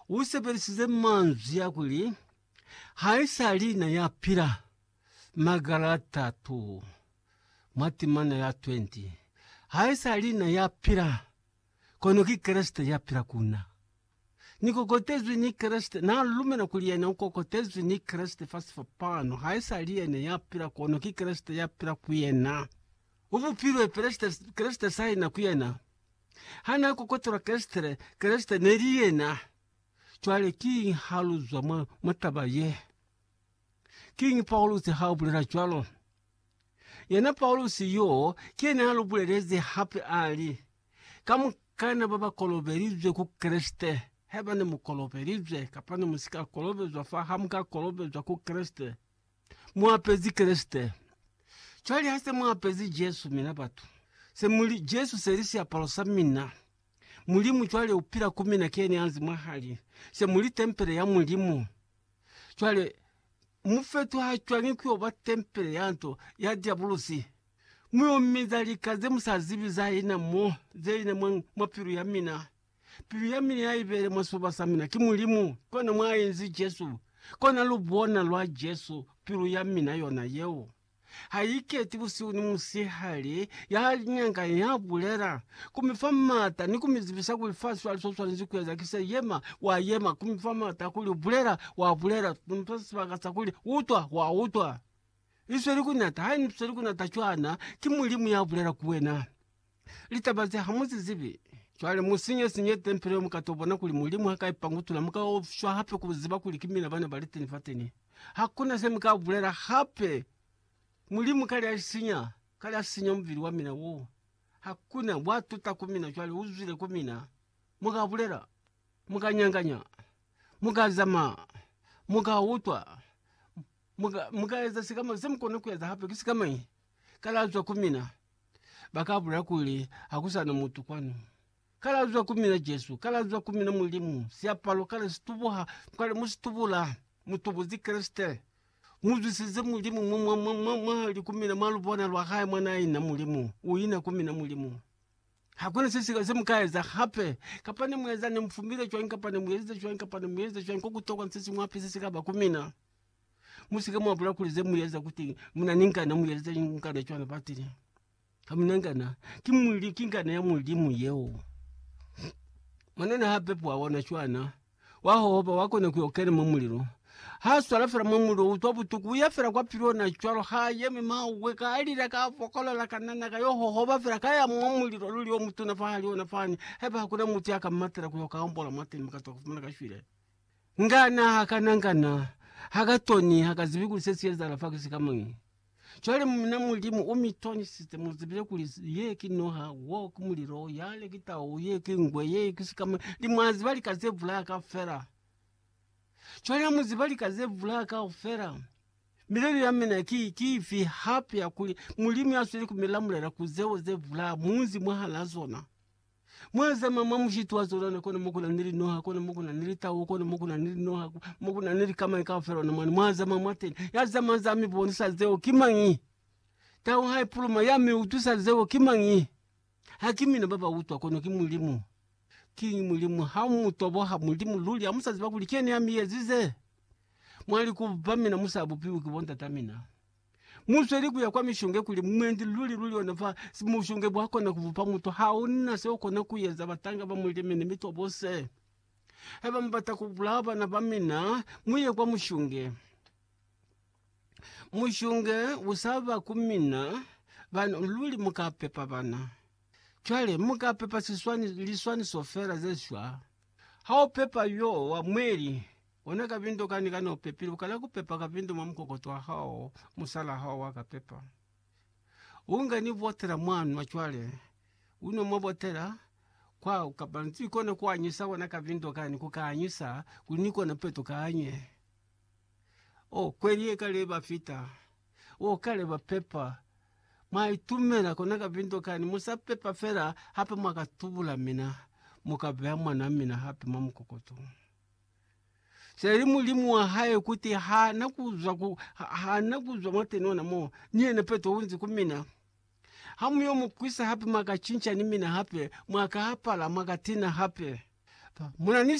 u sebelisize manzwi a kuli, Haisali na ya pila, magala a tatu mwa timana ya 20. Haisali na ya pila, kono ki Kreste ya pila ku na. Ni kokotezwi ni Kreste, na lumela kuli yena u kokotezwi ni Kreste fa sifapano. Haisali yena ya pila, kono ki Kreste ya pila ku yena. U bupilwe, Kreste, Kreste saina ku yena. Hana kokotola Kreste, Kreste neli yena. Cwale kiñi ha lu zwa mwa, mwa taba ye? Kiñi Paulusi ha bulela cwalo? Yena Paulusi yo, ki yena ya lu bulelezi hape a li, Kamukana ba ba kolobelizwe ku Kreste, haiba ne mu kolobelizwe kapa ne mu si ka kolobezwa fa ha mu ka kolobezwa ku Kreste, Mu apezi Kreste. Cwale ha se mu apezi Jesu, mina batu, se mu li, Jesu se li siapalo sa mina. Mulimu cwale u pila ku mina, keni anzi mwahali. Se mu li tempele ya Mulimu. Cwale, mu fetuha cwañi ku yo ba tempele ya nto, ya Diabulusi? Mu yo minza lika ze mu sa zibi za ina mo, ze ina mwa, mwa pilu ya mina. Pilu ya mina ya ibeele mwa sifuba sa mina, ki Mulimu, kona mwa inzi Jesu, kona lubona lwa Jesu, pilu ya mina yona yeo. Ha i keti busihu ni musihali, ya nyanganya, ya bulela, ku mi fa mata, ni ku mi zibisa kuli fa swa li so swanezi ku eza, ki se, yema, wa yema, ku mi fa mata, kuli bulela, wa bulela, ku mi fa sibaka sa kuli utwa, wa utwa. I sweli ku nata, ha i sweli ku nata cwana, ki Mulimu ya bulela ku wena. Litaba ze ha mu zi zibi. Cwale mu sinye sinye tempele yo mu ka to bona kuli Mulimu ha ka i pangutula. Mu ka ofiswa hape ku ziba kuli ki mina bana bali teni fateni. Hakuna se mu ka bulela hape. Mulimu kale a sinya, kale a sinya mubili wa mina wo. Hakuna. Wa tuta ku mina cwale, u zwile ku mina. Mu ka bulela. Mu ka nyanganya. Mu ka zamaa. Mu ka utwa. Mu ka, mu ka eza sikama. Se mu kona ku eza hape ki sikamañi? kalazwa ku mina, ba ka bulela kuli, Ha ku sa na mutu kwanu. Kalazwa ku mina Jesu, kalazwa ku mina Mulimu, siapalo kale si tubuha, kwale mu si tubula, mu tubuzi Kreste, mu zwisize Mulimu mwa, mwa, mwa, mwa, mwa li ku mina mwa lubona lwa hae mwa na ina Mulimu, u ina ku mina Mulimu. Hakuna se si, se mu ka eza hape, kapa ne mu eza, ne mu fumile cwañi, kapa ne mu ezize cwañi, kapa ne mu ezize cwañi, ko ku tokwa ni se siñwi hape se si ka ba ku mina. Musike mwa bula kuli zemueza kuti muna ni ngana mueza ngana cwana batile. Hamuna ngana ki mwili ki ngana ya mulimu yeo. Mwanena hape pwa wana cwana wa hohoba wa kona kuyo kena mwa mulilo. Ha swala fela mwa mulilo utwa butuku uya fela kwa pili ona cwalo ha yemi mawe ka alila ka fokolola ka nana ka yo hohoba fela ka ya mwa mulilo luli o mutuna fa hali ona fani. Haiba hakuna mutu ya ka matela kuyo ka ombola mwa teni mukatwa kufumana ka shwile. Nga na hakana, nga na ha ka toni, ha ka zibi kuli se si ezahala fa kisi ka moni. Cwale mina Mulimu u mi tonisise mu zibile kuli ye ki noha, wo ki mulilo, yale ki tau, ye ki ngwe, ye kisi ka moni, ni mwa ziba lika ze bulaya kaufela. Cwale ha mu ziba lika ze bulaya kaufela, milelo ya mina ki, ki ifi hape ya kuli Mulimu ya sweli ku mi lamulela ku zeo ze bulaya mu nzi mwahal'a zona? Mwazama mwa mushiti wa zona na kona mokuna ni linoha kona mokuna ni litau kona mokuna ni linoha mokuna ni likamani kaufela ona mwana mwazama mwateni ya zama za mi bonisa zeo ki mangi tau hai puluma ya mi utusa zeo ki mangi hakimina baba utwa kono ki mulimu ki mulimu ha mu toboha mulimu luli ya musa ziba kuli kene ya mi yezize mwali kuba mina musa bupiwi ki bo ndata mina. Musweli kuya kwa mishonge kuli mwendi luli luli ona fa mushonge bwa kona kubupa mutu. Hauna se ukona kueza batanga ba mulimi ni mitwa bose. Haiba mubata kubulaya bana ba mina, muye kwa mushonge. Mushonge usaba ku mina bana luli muka pepa bana. Cwale muka pepa siswani liswaniso fela ze shwa. Haupepa yo wa mweli. Ona kabindo kani kani opepile, ukala kupepa kabindo mwa mukokoto wa hao, musalaa hao wa kapepa. Unga ni botela mwa nwa cwale, unwa mwa botela kwa kapa nzi kona kuanyisa kona kabindo kani, kukaanyisa kuli ni kona peto kanye. O, kweli ye kale ba fita, o kale ba pepa, mwa itumela kona kabindo kani, musa pepa fela hape mwa ka tubula mina, muka beya mwana wa mina hape mwa mukokoto. Seli mulimu wa hae kuti ha na kuzwa ku, ha, ha na kuzwa mwa tenona mo, ni yena Petro unzi ku mina, Ha mu yo mu kwisa hape mwa ka cinca ni mina hape, mwa ka apala, mwa ka tina hape. Muna ni